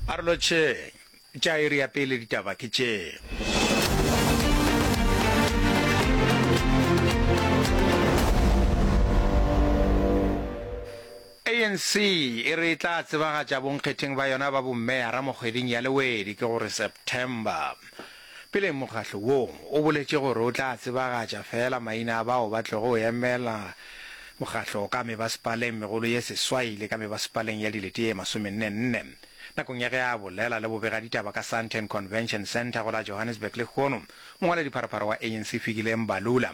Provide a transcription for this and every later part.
Arolotšheng tša iri ya pele ditaba ke tše. ANC e re e tla tsebagatša bonkgetheng ba yona ba bommeya ramokgweding ya lewedi ke gore September. Pele mokgatlo wo o boletše gore o tla tsebagatša feela maina a bao ba tlogo go emela mokgatlo ka mebasepaleng megolo ye seswai le ka mebasepaleng ya dilete ye masomenne-nne, nakong ya ge a bolela le bobegaditaba ka Sandton Convention Centre go la Johannesburg lehono, mongwaladipharopharo wa ANC Fikile Mbalula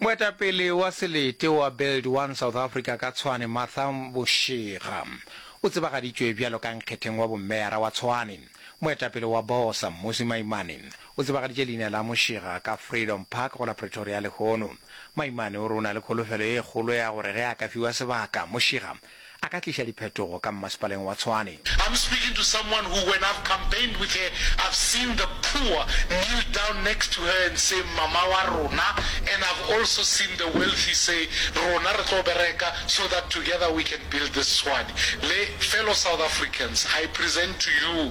Moetapele wa selete wa Build One South Africa ka Tshwane Martha Boshega o tsebagaditšwe bjalo ka nkgetheng wa bommeara wa Tshwane. Moetapele wa Bosa Mmusi Maimane o tsebagaditše leina la Moshega ka Freedom Park go la Pretoria lehono. Maimane o re o na le kholofelo e kgolo ya gore ge a ka fiwa sebaka, Moshega a ka tliša diphetogo ka mmasepaleng wa Tshwane. I'm speaking to someone who when I've campaigned with her I've seen the poor kneel down next to her and say mama wa rona and I've also seen the wealthy say rona re tlo bereka so that together we can build this Tshwane le fellow South Africans I present to you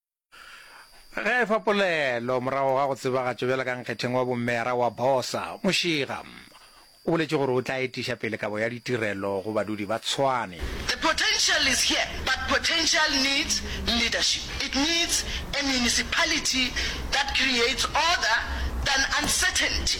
ge a efa polelo morago ga go tsebagatšo bjalo ka nkgetheng wa bommeyara wa bosa mošiga o boletše gore o tla etiša pele kabo ya ditirelo go badudi ba tshwane The potential is here but potential needs leadership. It needs a municipality that creates order than uncertainty.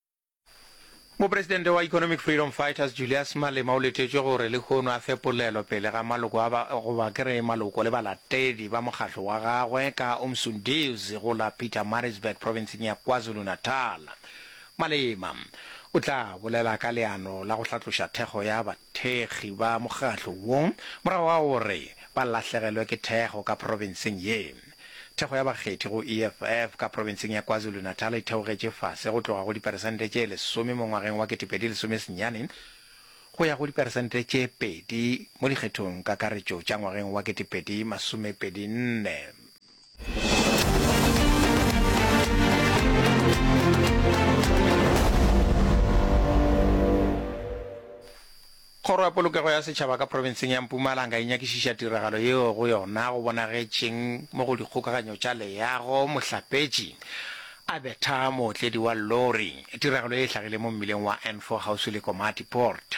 Mopresidente wa Economic Freedom Fighters Julius Malema o letetšwe gore lehono a fe polelo pele ga maloko a ba goba ke re maloko le balatedi ba mokgatlo wa gagwe ka Umsundiws go la Pietermaritzburg provinseng ya KwaZulu-Natal. Malema o tla bolela ka leano la go hlatloša thekgo ya Thekgi ba mokgatlo wo morago ga gore ba lahlegelwe ke thekgo ka profenseng ye. Thekgo ya bakgethi go EFF ka profenseng ya KwaZulu-Natal e theogetše fase go tloga go diperesente tše lesome mo ngwageng wa ketepedi lesome senyane go ya go diperesente tše pedi mo dikgethong kakaretšo tša ngwageng wa ketepedi masomepedi nne. Kgoro ya Polokego ya Setšhaba ka profenseng ya Mpumalanga e nyakišiša tiragalo yeo go yona go bonagetšeng mo go dikgokaganyo tša leago. Mohlapetši a betha mootledi wa lori. Tiragalo ye e hlagile mo mmileng wa N4 kgauswi le Komati Port.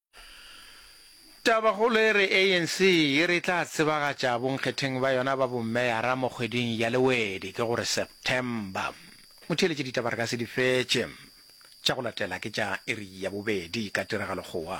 Tabakgolo e re ANC e re e tla tsebagatša bonkgetheng ba yona ba bomeyara mo kgweding ya Lewedi, ke go re September. Motheeletše ditaba re ka se di fetše. Tša go latela ke tša iri ya bobedi ka tiragalo kgowa.